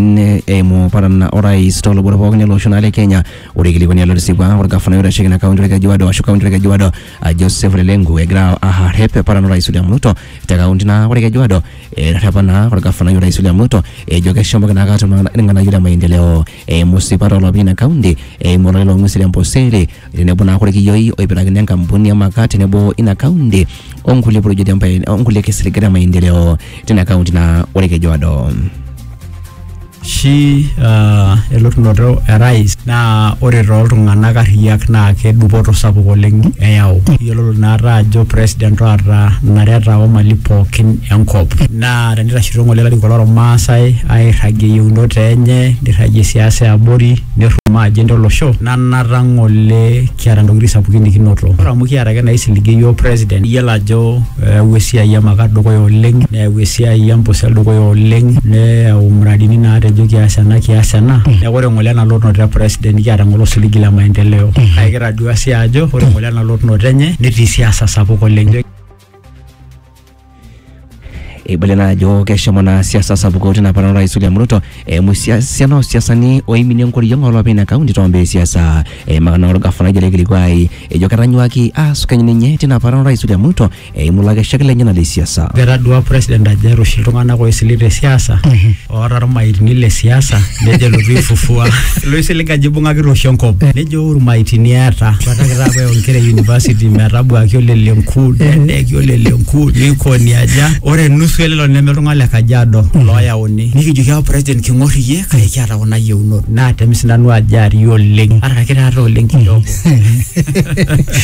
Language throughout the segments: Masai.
ne- eimu paran orais tolubot pookin ele osho naa le Kenya. Ore eikilikuani alo tesipa orgafanai oitasheki ina kaunti Olkejuado ashu kaunti Olkejuado ah, Joseph Lelenku egira arrep paran orais William Ruto te kaunti naa Olkejuado eterrepa naa orgafanai orais William Ruto ejo keshomoki naake atum irng'anayio le maendeleo eimu sipat oolopeny ina kaunti eimu olale loo ng'uesi le Amboseli tenebo naa korkiyioi oipirakini enkampuni e Maka tenebo ina kaunti onkulie projeti e mpae- onkulie kisiligat e maendeleo tina kaunti naa ore Kejuado. shi uh, elotunoto e rais naa ore tooltung'anak arriyiak naa kedupoto sapuk oleng eyau iyiololo naata ajo president oota nareta omali pookin enkop naa tenitashito ng'ole ilarikok lormaasai airragie yieunot enye nirragie siasa eabori nerrumaa agenda olosho na nata ngole kiata ntokitin sapukin nikinoto ore amu kiata ake naisiligie yiok president iyiolo ajo eyawua esiai e makaa dukuya oleng neyau esiai empusel dukuya oleng neyau muradini natejo kias ena kias ena neeku ore ngole ena lotunoto e president nikiata ngole osiligi le maendeleo kake kitadua sii ajo ore ngole ena lotunoto enye netii siasa sapuk oleng. eibale naa ajo keshomo naa siasa sapuko tina parana orais William Ruto eimu esiana oosiasani oiminie enkoriong olopeny ina kaunti toombaa esiasa eimaka naa orgafanai ojo ele kilikuai ejo ketanyuaki aasukeny ninye tina parana orais William Ruto eimu lakeshak lenyenak le siasa. Etadua president ajo eeta oshi iltung'anak oisiligi te siasa oota irmaitini le siasa nejo elotu aifufua loisilig ajo ibung'akita oshi enkop nejo urmaitini eeta bataki taa apa inkera e university metabuaki olelenku nedeeki olelenku nikoni aja ore nusu elelo neme iltung'anak le kajiado looyauni nikijoki apa president king'or iyie kake kiata kuna yieunot naatem sinanu ajo arii oleng ataraki taata oleng kidogo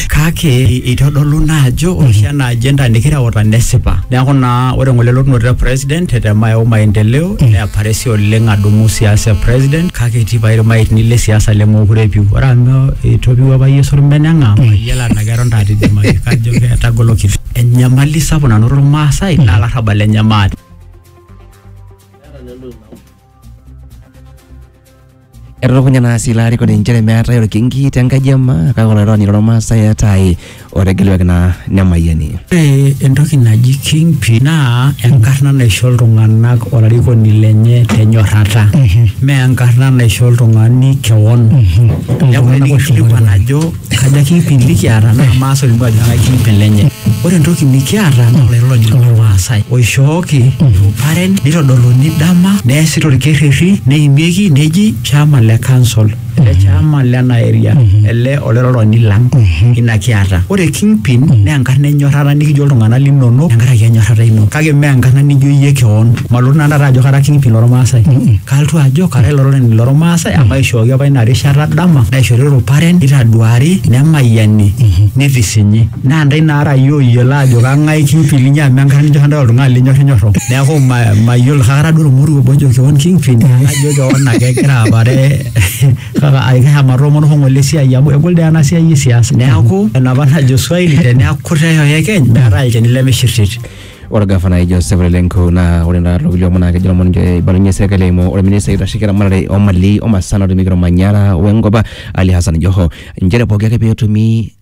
kake eitodolu naa ajo ore oshi ena agenda nikireuta nesipa neeku naa ore ng'ole elotunoto e president tetema yau maendeleo neapare si oleng adumu siasa e president kake etii pae irmaitini le siasa lemookure epiu ore amu etopiua apa Yesu orbene eng'ang mayiolo anaa keton taata idimaki kajo ketagolokito enyamali sapuk nanotito irmaasai naa larrabal lenye maate. Etutukunya naa sii ilarikoni inchere meetae olkinki te nkaji ema kake olairony lormaasai eetae otegeluaki naa nemayiani. Ore entoki naji kingpin naa enkarna naisho iltung'anak olarikoni lenye tenyorrata. Mee enkarna naisho oltung'ani kewon. Neeku tenikingilikuan ajo Ekaja kiipim nikiata naa maas olimu ajo eng'ae kiipim lenye. Ore entoki nikiata naa olairoroki lormaasai oishooki iruparen nitodoluni dama neesi torkerrerri neimieki neji chama le council ele chama lena area ele olairoroni lang ina kiata. Ore kingpin naa enkarna enyorrata nikijo iltung'anak linonok tenkaraki enyorrata ino kake mee enkarna nijo iyie keon. Malotu nanu taata ajo kara kingpin lormaasai kalotu ajo kara olairoroni lormaasai amu aishooki apa ina rishata dama naishori ruparen neitaduari nemayiani nitisinyi naa ndai naara iyie oyiolo ajo kang'ae kingpin linyi amu enkata nijo kandol oltung'ani linyorrinyorro neeku ma- mayiolo kake atadua ormoruo obo ojo kewon kingpin najo kewon ake egira apare kake ai keshomo atoomono hoo ng'ole esiai amu egol doi ena siai e siasa neeku enapa najo swahili teneaku kutitik oyekeny meetae olchani lemishirtit. Ore gafanai Joseph Ole Lenku naa ore naa lookulie omon naa kejo lomon ninche eibalunye serkali eimu olministai oitasheki eramatare o mali o masaa natumieki olmanyara we nkop Ali Hassan Joho inchere pooki ake peetumi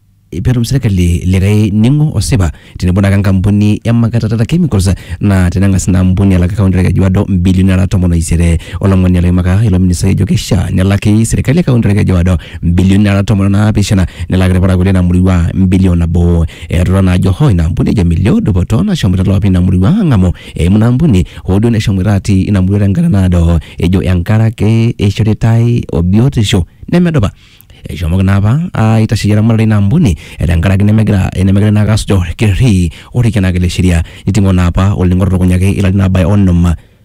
petum serkali likae ning'o osipa tenebo naake enkampuni e Makata Data Chemicals naa teneng'as ina ampuni alak kaunti e Kajiado imbilioni nara tomon o isiet. Olomoni loimaka ilo ministai ejo keishaa nelaki serkali e kaunti e Kajiado imbilioni nara tomon o naapishana nelak ilparakuo leina murua mbilion nabo. Eirura naa ajo hoo ina ampuni ejo melio dupoto nashomoita loopi ina murua ang'amu eimu ina ampuni hoo duo neshomoita atii ina murua tenkata naado ejo enkaraki eishoritai o biotisho nemedupa. Eshomoki naa apa aitasheyie eramatare ina ampuni tenkaraki nemegira nemegira naa ake asuj orkereri otikienaki le sheria. Niting'o naa apa olning'o to lukunya ake ilarin aabaya onom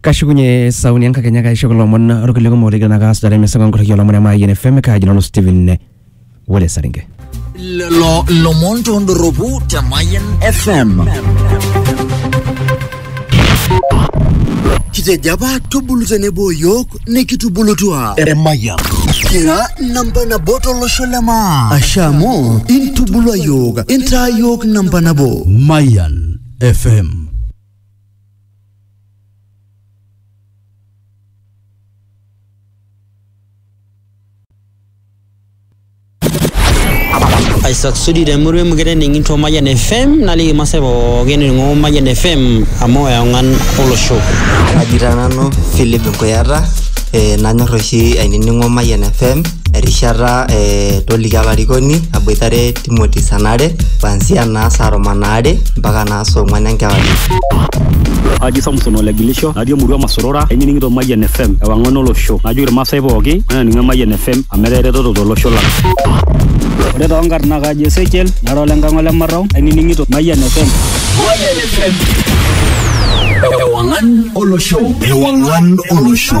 kashukunye sauni enkakenya kaisho kulo omon orkulie kumok ligira naa kaasujare emisa enkorriki olomon e Mayian FM kaaji nanu Steven Wole Saringe. lelo lomon tondoropu te Mayan FM. Kitejo apa tubulu tenebo yiok nikitubulutua Emayian. kira namba nabo tolosho le maa asha amu intubulua yiok intaa yiok namba nabo Mayan. FM. Isaac Sudi te murua emukete ning'into Mayian FM naliki masaa pookin ning'o Mayian FM amu eong'an olosho. Kaji taa nanu Philip Nkuyata eh, nanyor oshi ainining'o Mayian FM erishata eh, toliki alarikoni aboitare Timothy sanare kuanzia naa saa tomon aare mpaka naa saa ong'wan enkewarie. Aji Samson ole Gilisho natii emurua Masorora ainining'ito Mayian FM ewang'an olosho najoki irmaasai pooki mainining Emayian FM amu etaa eretoto tolosho lang. Ore too nkarn naa kaji Ezekiel nara ole nkang ole Marrau ainining'ito Mayian FM. Mayian FM. Ewang'an olosho. Ewang'an olosho.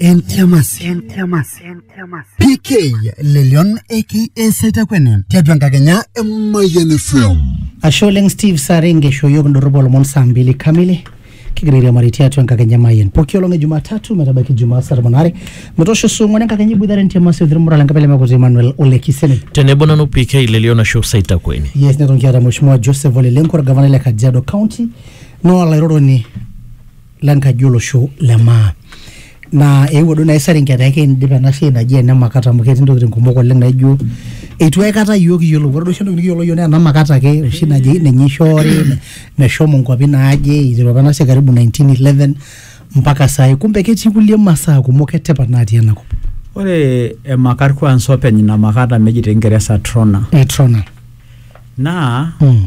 entiamasi entiamasi entiamasi pk lelion aka saitakwene tiatua enkakenya emayian fm ashe oleng steve sare nkeshoyio kindorropu olomon saa mbili kamili kigira airiamari tiatua enkakenya mayen poki olong e jumatatu metabaiki jumaa saa tomon are metoosho saa ong'uan enkakenya iboitare entiamasi othirmura lenkabila mekuti emmanuel ole kiseni tenebo nanu pk lelion ashu saitakweni yes neton kiata mheshimiwa joseph ole lenku orgavanai le kajiado county naa olairoroni le nkaji olosho le maa naa eewuo duo naaji Saringe etaa ekeidip ena siai naji ene makata amu ketii intokitin kumok oleng naijo eitu aikata iyiok iyiolou ore duo oshi entoki nikiyiolo iyiok naa ena makata ake oshi naji ninye eishoori meshomo inkuapi naaje eiteru apa ena siai karibu 1911 mpaka saai kumbe ketii kulie masaa kumok etipat natii ena kop. Ore emakat kwansa openy ina makata meji te kingeresa trona eh, trona naa mm.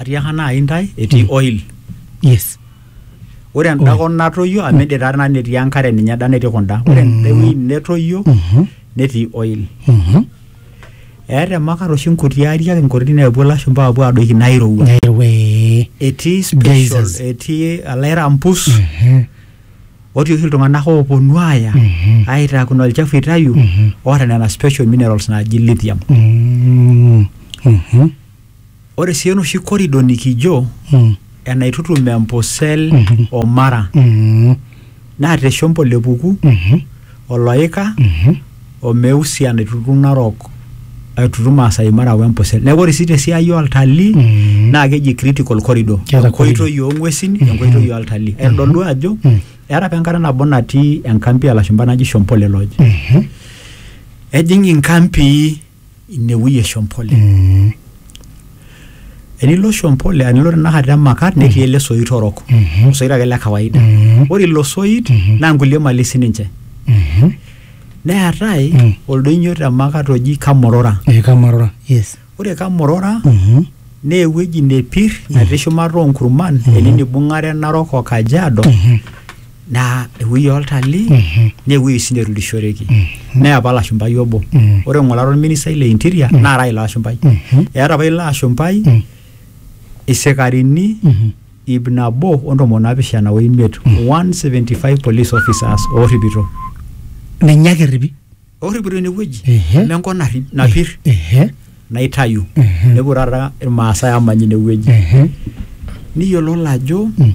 atiaka naaji intae etii mm. oil yes ore enda kop natoyio amu ede taa nanu etii enkare ninye eda netii kunda ore mm. enda wueji netoyio mm-hmm. netii oil mm-hmm. eeta emakar oshi nkuti ariak inkuti neepuo ilashumba apuo adoiki nairowua etii special etii alairampus mm-hmm. otii oshi iltung'anak ooponu aaya aitaa kuna olchafu itayu oota nena special minerals naaji lithium Ore sii enoshi korido nikijo Mm. enaitutum Empusel Mhm. o Mara Mm. naa te Shombo le Puku, Mhm. Oloika Mhm. o Meusi enaitutum Narok aitutum Maasai Mara o Empusel. Neeku ore sii te siai oltalii Mm. naa keji critical corridor. Keeta corridor. Enkoitoi oo ng'uesin, Mhm. enkoitoi oltalii. Aitodolu ajo Mm. eeta apa enkata nabo natii enkampi oo lashumba naji Shombo le Lodge. Mhm. Ejing inkampii inewueji e Shompole. Mm. Enilo Shompole, enilo tenakata Emakat netii ele soit orok. Mhm. Osoit ake le kawaida. Mhm. Ore ilo soit Mhm. naa nkulie mali sininche. Mhm. Neetae Mm. oldoinyo te Makat oji Kamorora. Eh, Kamarora. Yes. Ore Kamorora Mhm. naa ewueji nepir natii shumata oonkurman ene nibung'are Narok o Kajiado Mhm. naa ewueji oltalii Mhm. naa ewueji sii neturishoreki Mhm. naa apa lashumpai obo Mhm. ore ng'urari olministai le interior naa ara ilo ashumpai Mhm. eeta apa ilo ashumpai Mhm. isikarini Mhm. ip nabo o ntomoni naapishana o imiet 175 police officers oorripito ninye ake erripi orripito inewueji Ehe. amu enkop narri- napir Ehe. naitayu Mhm. nepuo taata irmaasai amany inewueji Ehe. niyiololo ajo Mm.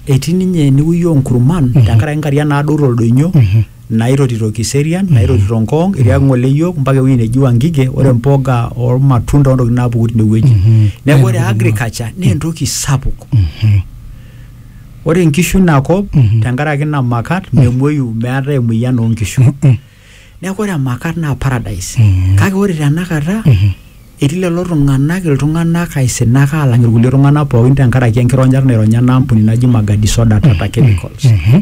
etii ninye enewueji onkurman Mhm. tenkaraki nkariak naaduo toldoinyo Mhm. naitotito kiserian naitotito nkong itiaki ng'ole yiok mpaka ewueji neji wangige ore mpoga ormatunda ontokitin naapuku tinewueji Mhm. neeku ore Nena agriculture naa entoki sapuk Mhm. ore nkishu ina kop Mhm. tenkaraki ina makat memuoyu meetae emoyian oo nkishu Mm-mm. neeku ore emakat naa paradise Mhm. kake ore tenakata Mhm. etii lelo tung'anak iltung'anak aisinak aalang irkulie tung'anak pookin tenkaraki enkironyata naironya ena ampuni naji Magadi soda tata chemicals Mhm.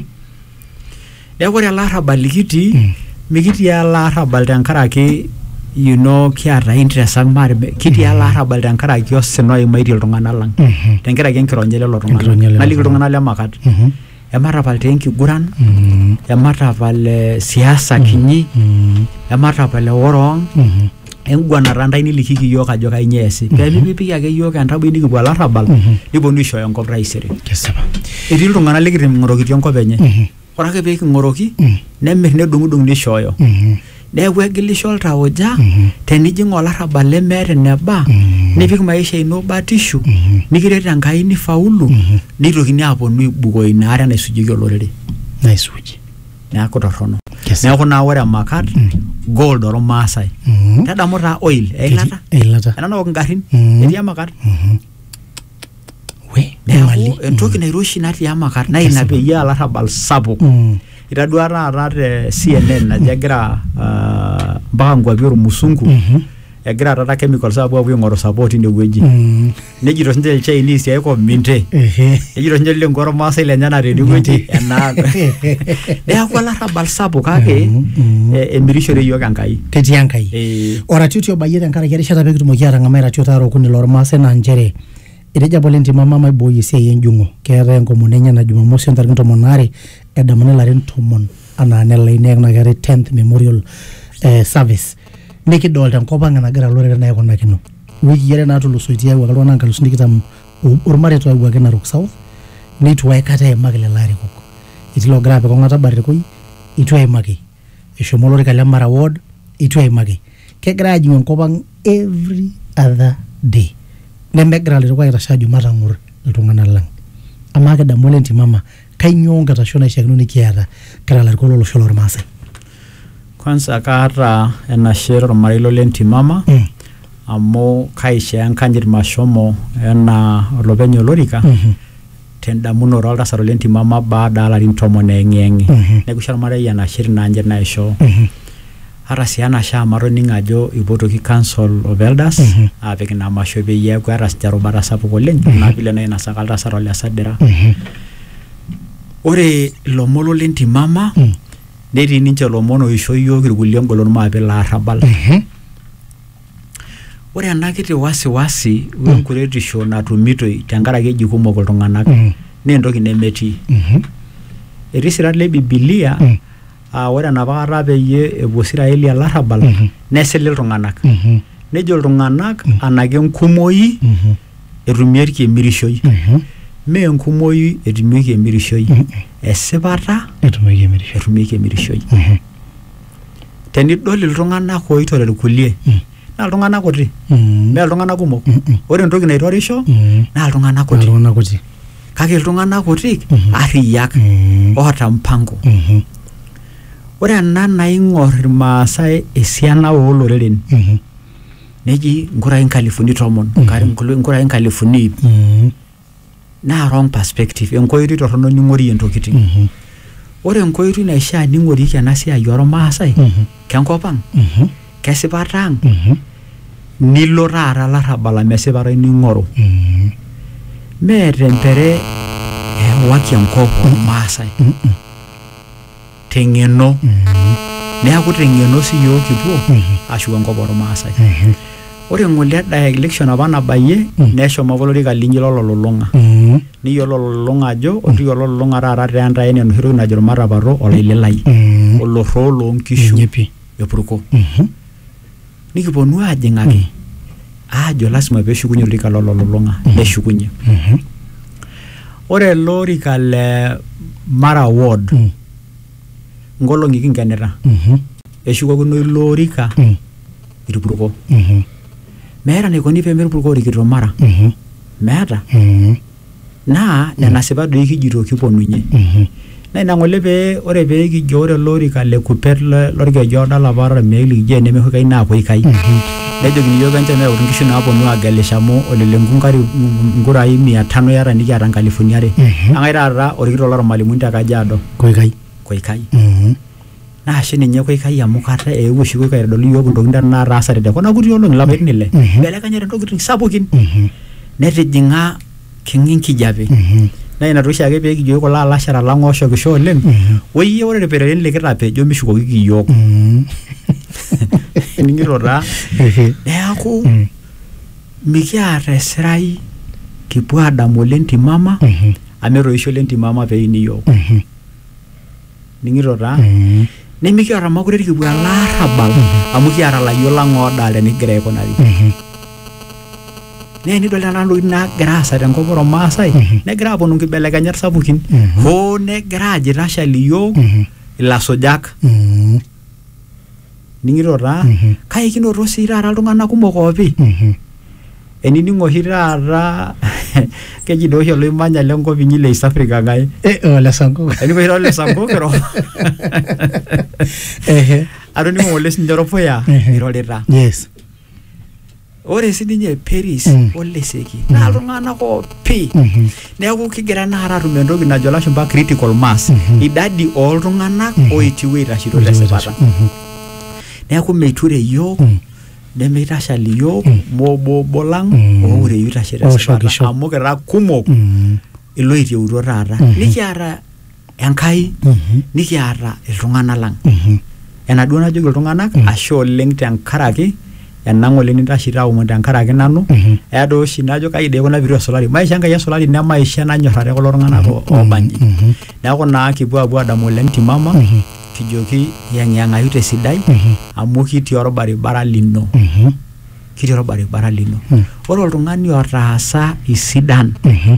Neeku ore ele arrabal likitii Mm. mikitii ele arrabal tenkaraki you know kiata interest ang maate be- kitii ele arrabal tenkaraki osina oimaitie iltung'anak lang Mhm. tenkaraki enkironya lelo Enkironya tung'anak lelo naliki tung'anak. iltung'anak le makat Mhm. ematapal taa enkiguran Mhm. ematapal eh, siasa kinyi Mhm. ematapal eworong Mhm. enguanata ntae nilikiki iyiook ajo kainyioo eesi pee mipipiki ake iyiook entaboi nikipuo olarrabal niponu aishooyo enkop taisere kesipa etii iltung'anak likiting'orokitia enkop enye ore ake pee king'oroki nemir nedung'udung nishooyo neeku egilisho oltauja tenijing olarrabal lemeeta eneba nipik maisha ino batishu nikiret Enkai nifaulu nitokini aaponu aibukoo ina are naisujieki olorere naisuji neaku torrono Yes. neaku naa ore emakat gold ormaasai Mhm. tadamu taa oil eilata eilata ena naok ingarrin Mhm. etii emakat we emali neaku entoki nairoshi natii emakat naa ina peyie alarrabal sapuk Mm. itadua taata te CNN ajo egira ah, mpaka nkuapi ormusungu Mhm. egira taata chemicals apuo apuo aing'oru support inewueji Mm. nejito sinche ilchainisi aiko minte Ehe. nejito sinche lile nkuaru maasai lenyena tenewueji enaa neeku olarrabal sapuk kake Mhm. eh, emirishore iyiook enkai ketii enkai Eh, oratioti obayie tenkaraki erishata pee kitumoki aatang'amaa iratiot aare okuni lormaasai naa nchere etejo apa lentima mama aibooyo esiai enjung'o keetae enkomono enye na jumamosi ontarikini tomon aare edamuni ilarin tomon anaa nelai neeku naa keetae 10th memorial eh, service nikidolta enkop ang enagira loreren aikunakino wiki are natulusoitie ayawuaki iltung'anak nkalusuni tikitam o- ormareita oyawuaki narok south neitu aikata eimaki lelo arikok etii logira apik ong'ata barikoi eitu eimaki eshomo olorika le mara ward eitu eimaki kegira ajing'u enkop ang every other day nemegira lairukok aitashe ajo matang'or iltung'anak lang amaa kidamu ole ntimama Kainyoo enkitasho naishiakino nikiata kira ilarikok lo losho lormaasai? Kwanza kaata enashe tormarei lolentimama Mm. amu kaishoo enkanyit mashomo enaa olopeny olorika Mhm. tendamunoto oltasat olentimama baada alarin tomon eyeng'iyeng'i. Mhm. Neaku aisho olmarei enashe tina anyit naishoo. Mhm. Ata sii enashe amu atoning'o ajo eipotoki council of elders aapik ina masho peyie eeku etasja erubata sapuk oleng anaa vile nainosaka oltasat ole Sadira. Ore ilomon lo lentimama netii ninche ilomon oisho iyiook irkulie engolon maape ilo arrabal. Ore ena kiti wasiwasi o enkuretisho natumitoi tenkaraki eji kumok iltung'anak naa entoki nemetii. Etii isirat le bibilia aa ore enapa kata peyie epuo Israeli olarrabal Mhm. nesili iltung'anak Mhm. nejo iltung'anak Mhm. anake enkumoi Mhm. etumieki emirishoi Mhm. mee enkumoi etumieki emirishoi Mhm. esipata Etumieki emirisho. etumieki emirishoi Mhm. tenidol iltung'anak oitore irkulie Mhm. naa iltung'anak kuti Mm. mee iltung'anak kumok Mm-mm. ore entoki naitorisho Mm. naa iltung'anak kuti Iltung'anak kuti. kake iltung'anak kuti Mhm. arriyiak Mm. oota mpango Mhm. ore ena naing'or irmaasai esiana ooloreren Mhm. neji nkurai nkalifuni tomon Mhm. nkar- nkul- nkurai nkalifuni iip Mm. naa wrong perspective enkoitoi torrono ning'orie ntokitin Mhm. ore enkoitoi naishaa ning'orieki ena siai ormaasai Mhm. kenkop ang Mhm. kesipata ang Mhm. nilo taata larrabal amu esipata ino ing'oru Mhm. mee tempere ewaki enkop ormaasai Mhm. teng'eno neaku teng'eno si yiok kipuo ashuko enkop ormaasai ore ng'ole eda election apa nabayie neshomo apa olorika linyi lololulung'a neyiolo ololulung'a ajo ore ololulung'a taata taa entai enaa enoshi toki najo irmatapato olaililai olorroo lonkishu epurko. nikiponu aajing'aki aajo lasima peeshukunye olorika lololulung'a neshukunye Mhm. ore ele orika le mara ward Mm. nkolong'i kinkenita Mhm. eshukokino ilo orika Mm. irpurko Mhm. meeta enaikoni pemerpurko orikito mara Mhm. meeta Mhm. naa nena sipat doi kijito kiponunye naa ina ng'ole pee ore pee kijo ore ele orika le kupet le- lorkeju oodo olapa oota irmeek likijo enemeho ikai naapuo ikai nejokini iyiook enchom eyautu inkishu naaponu aagelisho amu olelengua inkari inkurai mia tano iyata nikiata inkalifuni are ang'ae taata orkitok lormalimuni te kajiado koikai koikai Mhm. Naa ashe ninye koikai amu kata eewuo oshi koikai aitodolu iyiook intokitin naataasate te kuna kuti olong'i ilapaitin ile. Ibelekenyate intokitin sapukin. Netijing'a king'a enkijape. Naa ina toshi ake pee kijoki kulo alashera lang ooshokisho oleng, woiyie ore ilpereren likitapejo mishukokiki iyiook. Ining'ito taa? Neeku mikiata esirai kipuo aadamu olentimama amu etoishe olentimama pee eini iyiook. ning'ito taa Mm. nimikiata makure irkipu ele arrabal amu kiata layiok lang oodalta enikigira aikunari Mhm. naa enidol nena tokitin naagira aasa tenkop ormaasai negira aaponu nkibelekenyat sapukin Mhm. hoo negira ajo itashali iyiook Mhm. ilasujak Mm. ning'ito taa Mhm. kake kinoto sii taata iltung'anak kumok oopi Mhm. enining oshi taata keji doi oshi oloimanya lenkop inyi le East Africa ng'ae Eh, oh, le Sango. ening oshi taata ole Sango kiro Ehe. atoning'o ng'ole sinye oropuya Mhm. irorita Yes. ore sininye Peris Mm. o Leseki naa iltung'anak oopi Mhm. neeku kigira naa taata atum entoki najo lashumpa critical mass Mhm. idadi ooltung'anak Mhm. oitiwuo aitashito tesipata Mhm. neeku meiture iyiook Mm. nemeitashal iyiook Mm. moobobo lang Mm. oureyu itashe tesipata Oshokisho. amu kira kumok Mm. iloitieutuo taata Mhm. nikiata Enkai Mhm. nikiata iltung'anak lang. Mhm. Enaduo najoki iltung'anak Mm. ashe oleng tenkaraki enang oleng nintashi taaomon tenkaraki nanu Mhm. eya doi oshi najo kai doi kuna pitu esulari maisha enkai esulari ne maisha nanyorrare kulo tung'anak o- oobanji Mhm. neeku naa kipuo apuo adamu oleng timama Mhm. kijoki yeng'iyeng'ayu tesidai Mhm. amu kitii orbaribara lino Mhm. kitii orbaribara lino Mm. ore oltung'ani otaasa isidan Mhm.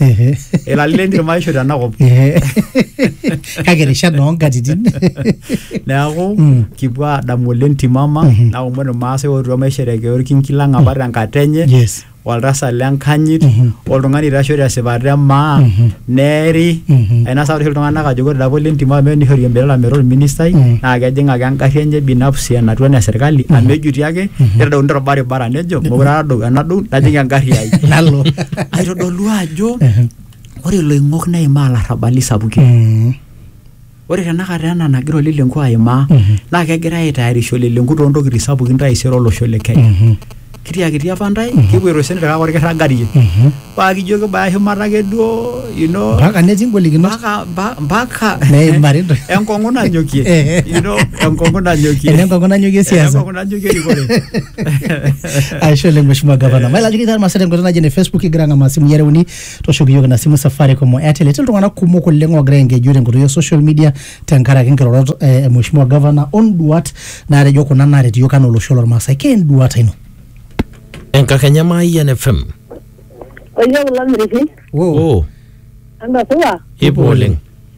Ehe. ilali lentim aisho tenakop Ehe. kake rishat noonkatitin neeku Mm. kipuo aadamu oleng timama Mhm. naomon irmaasai ootua maisherekea orkinki lang apa tenkata enye yes oltasat lenkanyit Mhm. oltung'ani oitashoo tesipata emaa Mhm. neeri Mhm. ainasa oshi iltung'anak ajo ore dapa lentim amu nishori embelala metaa orministai Mhm. naa kejing ake engarri enye binafsi enatua ene serkali amu ejuti ake nitadouni torbaribara nejo mokure adou enadou najing engarri ai nalo kitodolu ajo Ehe. ore iloing'ok neimaa ilarrabali sapukin Mm. ore tenakata ena nagira olelenku aimaa Mhm. naa kegira aitayarisho olelenku toontokitin sapukin taisere olosho le kenya Mhm. kitiakiti apa ntae kipuoito sii kake orkirragarie Mhm. paa kijo kibaya shumata ake duo you know, mpaka netii ngolikinot mpaka mpa- mpaka Neimari nto- enkong'u nanyokie Eh. you know, enkong'u nanyokie Enenkong'u nanyokie siasa. Enenkong'u nanyokie erikore aisho oleng mheshimiwa gavana mailakini taa irmaasai tenkoitoi naji ene facebook igira ang'amaa simui are uni tooshoki iyiook ina simu safaricom o airtel etii iltung'anak kumok oleng oogira aengeju tenkoitoi e social media tenkaraki nkirorot eh, e mheshimiwa gavana onduat naatejo kuna naaret iyiook anaa olosho lormaasai kee enduata ino enkakenya maayian fm Oye kulo miriki, oh. entasupa, ipo oleng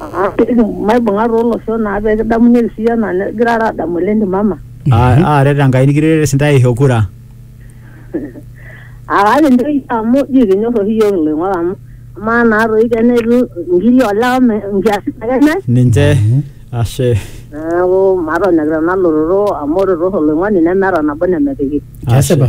Ah, maibung'a toolosho naa pee kidamunyeki sii anaa nigirara aadamu ele ndimama. Aa- Aaret Enkai nikiret sintae aisho kura. Ah, kake nchoo amu ji kinyor oshi iyiook iloing'ok amu amaa naa toi kena etu inkiri olewa me- nkiasin ake enyai. Ninche. Ashe. Neeku matonyok tena lototo amu ore too oloing'oni nemeeta nabo nemepiki. Kesipa.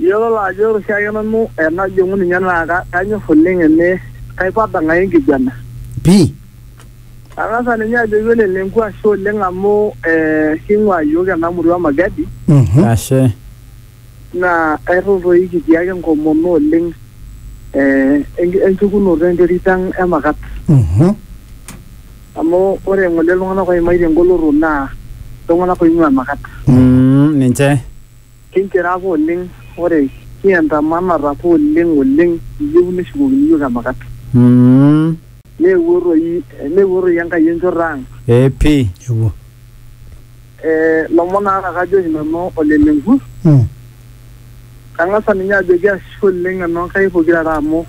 Iyiololo ajo ore oshiake nanu enajing'u ninye naa ka- kanyor oleng ene kaipada ng'ae enkiguana. Pi. Ang'asa ninye ajoki ole Lenku ashe oleng amu eh, king'ua iyiok ena murua e Magadi Mhm. Ashe. naa airrur toi kitii ake enkomono oleng eh, enki- enchukunoto enterit ang e Makat. Mhm. Amu ore ng'ole iltung'anak oimaitie engoloto naa iltung'anak oing'ua Makat. Mm, ninche. Kinchira apa oleng ore kiantamanata apa oleng oleng kiyieu neshukokini iyiook emakat. Umm. Neewuo toi neewuo toi Enkai enchoto ang. Ee pii eewuo. Ee lomon aata kajoki nanu Ole Lenku. Kang'asa ninye ajoki ashe oleng enoo Nkai pokira are amu.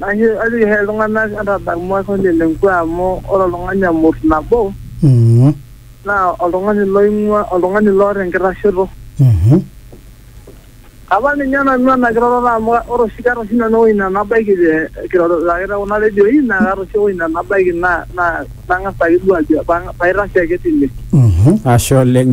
Ashe ajoki hee iltung'anak entadamu olchoni le nkua amu ore oltung'ani emurt nabo Mhm. naa oltung'ani loing'ua oltung'ani loota enkitashoto. Mhm. Apa ninye nanu ena kiroroto amu ore oshi keeta oshi nanu ewueji nenabaiki te kirorita ake te kuna redioi naa kaata oshi ewueji nenabaiki naa naa nang'as ake duo ajo paitashe ake tine. Mhm. Ashe oleng.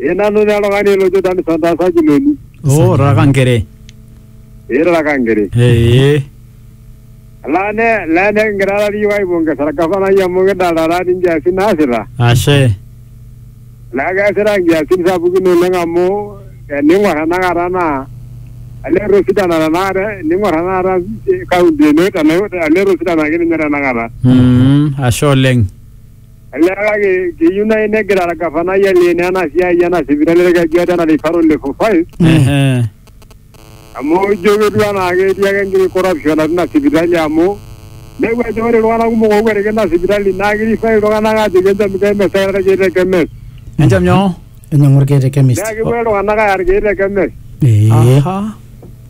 Ee nanu naa oltung'ani lojo nanu Santa Sajiloni. Oh, raka ngere. Ee raka ngere. Eh. Laa ne laa ne kigira taata iyiook aipongesa orgavanai amu kidolta taata inkiasin naasita. Ashe. Naa keesita inkiasin sapukin oleng amu tening'or tenakata naa elee etosidana tenakata ening'or tenakata kaunti ino elee etosidana ake ninye tenakata. Mm, ashe oleng. Olee kake keyieu naaji negira orgavanai aleen ena siai ena sipitali orkejuado ena referral level five Ehe. amu ijo ketiu enaa ketii ake enkiti corruption atua ina sipitali amu neeku ajo ore iltung'anak kumok ookwetiki ina sipitali naa kirifai iltung'anak aajoki enchom kemes taata irkeek te kemes Enchom nyoo? Enyiang'u irkeek te chemist. naa kepuo iltung'anak aaya irkeek te kemes Ee. Aha.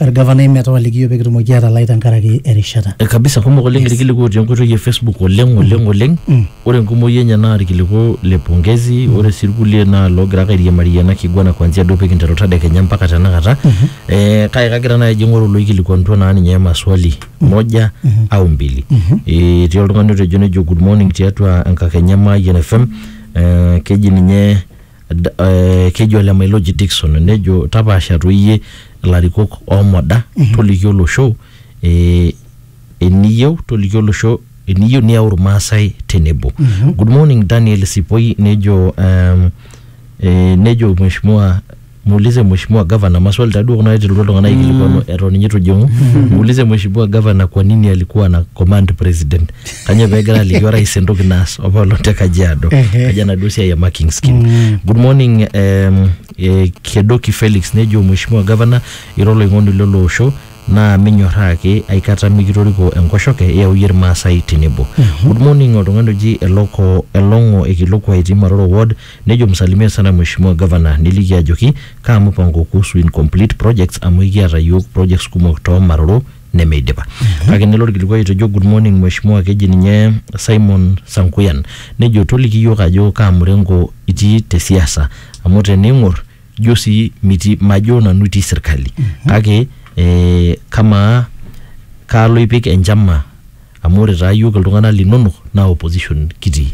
Orgavanai metawaliki yiok pekitumoki atalai tenkaraki erishata. Eh, kabisa kumok oleng yes. irkiliku otii enkoitoi e facebook oleng mm. oleng oleng mm. ore enkumoi enye naa irkiliku le pongezi mm. ore sii irkulie naa loogira ake airiamarie ena kiguana kuanzia duo pikinteru tadekenya mpaka tenakata mm -hmm. eh, kake kagira naaji aing'oru loikilikuanutua naa ninye maswali mm-hmm. moja mm -hmm. au mbili mm -hmm. eh, etii oltung'ani otejo nejo good morning tiatua enkakenya Mayian FM eh, keji ninye D- eh, keji ole Mailoji Dickson nejo tapaasha toi iyie ilarikok oomoda toliki olosho eh, eniyieu toliki olosho eniyieu niyau irmaasai tenebo good morning Daniel Sipoi nejo um, eh, nejo mheshimiwa muulize mheshimiwa gavana maswali taduo kuna naiterutua iltung'anak aikilikwanu eton ninye itu ijing'u muulize mheshimiwa gavana kwa nini alikuwa na command president kanyoo pegira aliki orais entoki naas opolo te kajiado Ehe. kaji enaduo siai e marking scheme good morning um, eh, kedoki felix nejo mheshimiwa governor ira oloing'oni lelo osho naa minyorraa ake aikata mikitoriko enkoshoke iyau iyie irmaasai tenebo good morning oltung'ani oji eloko elong'o ekiloko aitii maroro ward nejo msalimia sana mheshimiwa governor niliki ajoki kaa mupango kuhusu incomplete projects amu ekiata yiok projects kumok too maroro nemeidipa kake nelo orkilikuai otejo good morning mheshimiwa keji ninye Simon Sankuyan nejo toliki iyiook ajo kaa murengo itii te siasa amu tening'or ijo sii mitii majo nanu itii sirkali kake eh, kamaa kaalo ipik enchama amu ore taa yiok iltung'anak linonok naa opposition kitii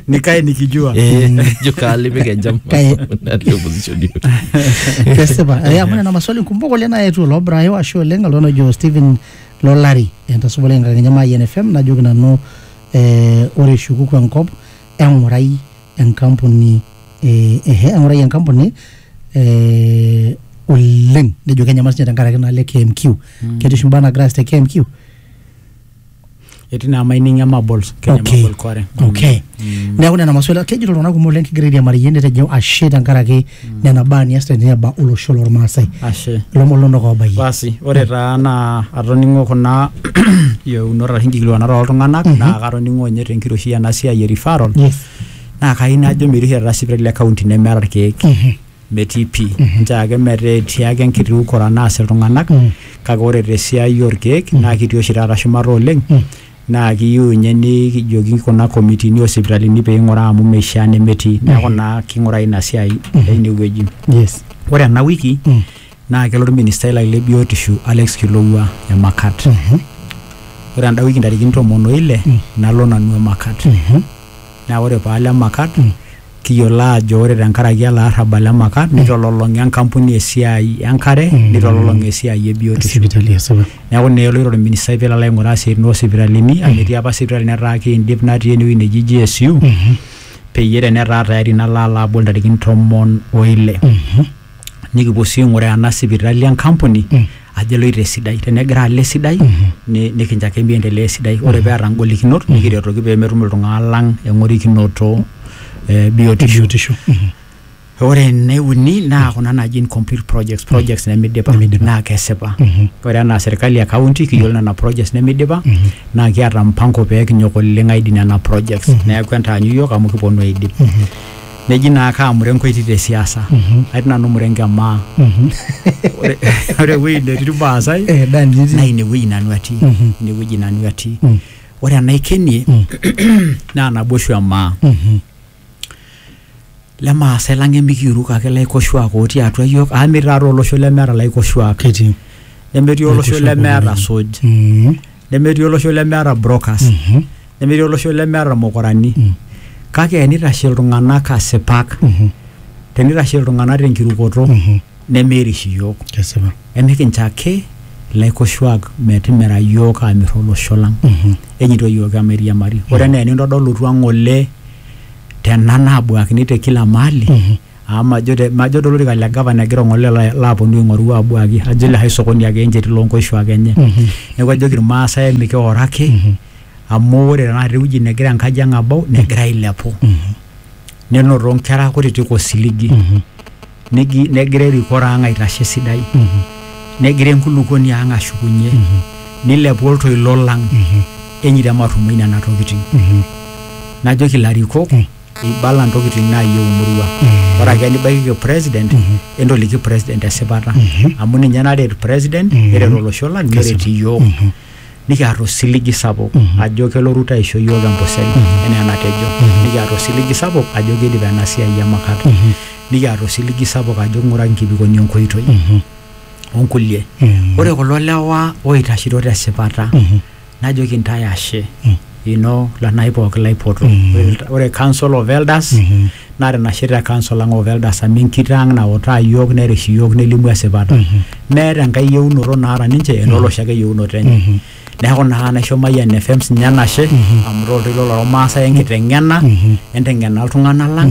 nikae nikijua Eh, jo kaalipik enjam Kae. natii opposition yiok. kesipa Eh, amu nena maswali kumok oleng naetuo loobrayo ashu oleng oltung'ani ojo Stephen Lolari entasupa oleng enkakenya maai NFM najoki nanu eh, ore ishukuku enkop eng'urai enkampuni eh, ehe eng'urayie enkampuni eh, oleng nejo kenyamal sinye tenkaraki inaalo e KMQ mm. ketii oshi imbaa naagira aas te KMQ etii naa mining emabols kenya Okay. mabol quarry okay neeku nena maswali kejito iltung'anak kumok oleng kigira airiamariyie netejo ashe tenkaraki nena baa nias teniaba olosho lormaasai ashe ilomon lonok oobayie basi ore taa naa atoning'o kuna yieunot arashu inkikilikuanat oltung'anak naa katoning'o ninye tenkiroshi ena siai e referral yes naa kayieu najo metii oshi taata sipitali e kaunti nemeeta irkeek metii pii nchoo ake metaa etii ake enkiti ukora naas iltung'anak kake ore tesiai orkeek naa kitii oshi taata shumata oleng naa kiyieu ninye nikijoki kuna komitini oo sipitalini pee ing'uraa amu meishaa nemetii neeku naa king'urai ina siai teine wueji. yes Ore ena wiki Mm. naa kelo olministai lai le biotisho Alex Kilowua Emakat. Ore enda wiki ntarikini tomon o ile nalo nanu Emakat. naa ore paalo Emakat kiyiolo aajo ore tenkaraki ele arrabal le maka nitololong'a enkampuni esiai enkare nitololong'a esiai e biotisho sipitali esipa neeku naa eloito orministai pelo alo aing'uraa isiaitin oosipitalini amu etii apa sipitali netaa kiindip natii enewueji neji GSU peyie tenetaa tayari nalo alo abol intarikini tomon oile nikipuo sii aing'uraa ena sipitali enkampuni ajo eloito esidai tenegira alo esidai ni- nikincho ake miendelea esidai ore peeta ngolikinot nikiretoki pemetum iltung'anak lang eng'orikinoto eh, biotisho biotisho ore ene uni naa kuna naji incomplete projects projects nemidipa Nemidipa. naa kesipa ore enaa serkali e county kiyiolo nena projects nemidipa naa kiata mpango pee kinyok oleng aidip nena projects neeku entaanyu yiok amu kiponu aidip neji naa kaamure enkoiti te siasa Mhm. atii nanu mure enkemaa Mhm. Ore- ore ewueji netii irmaasai Eh, Dani, nitii. naa inewueji nanu atii Mhm. inewueji nanu atii Mm. ore enaikenie Mm. naa naboishu emaa Mhm. lemaasai lang emikiuruk ake laikoshuak otii atua yiok amu metii taata olosho lemeeta laikoshuak Ketii. nemetii olosho Laikoshuak lemeeta oleng. suj Mhm. nemetii olosho lemeeta brokers Mhm. nemetii olosho lemeeta irmukurani Mm. kake enitashe iltung'anak asipak Mhm. tenitashe iltung'anak tenkirukoto Mhm. nemeirish iyiook Kesipa. emikincho ake ilaikoshuak metimira iyiook aamir olosho lang Mhm. enyito iyiook emairiamari ore enaa enintodolutua ng'ole tena naabuakini te kila mahali Mhm. Amu majo te majo to lorika le gavana egira ong'ole la laaponu aing'oru aabuaki ajo likae sokoni ake encheti loo nkoshuak enye. Neeku ajoki irmaasai mikioro ake amu ore tenakata ewueji negira enkaji ang' abau negira ailepu. Nenoto nkera kutitik osiligi, negi negira erikore ang' aitashe esidai, negira enkulukoni ang' ashukunye, nilepu oltoilo lang' enye te matumaini nena tokitin. Najoki ilarikok ibala ntokitin naayieu emurua ore ake nibaikiki president entoliki president esipata amu ninye naret president neret olosho lang neret iyiook nikiata osiligi sapuk ajo kelo Ruto aisho iyiook empusel enaa enatejo nikiata osiligi sapuk ajo kiidip ena siai e makat nikiata osiligi sapuk ajo king'uraki nkibikoni enkoitoi onkulie ore kulo lewa oitashito tesipata najoki ntae ashe ino lanai pooki laipoto ore council of elders naa tinashe te council ang of elders amu enkitoo ang nautaa iyiook nerish iyiook nelimu esipata meeta enkae yieunoto naata ninche enolosho ake yieunoto enye neeku naa naisho Mayian FM sinye enashe amu ira oltoilo lormaasai enkiteng'ena enteng'ena iltung'anak lang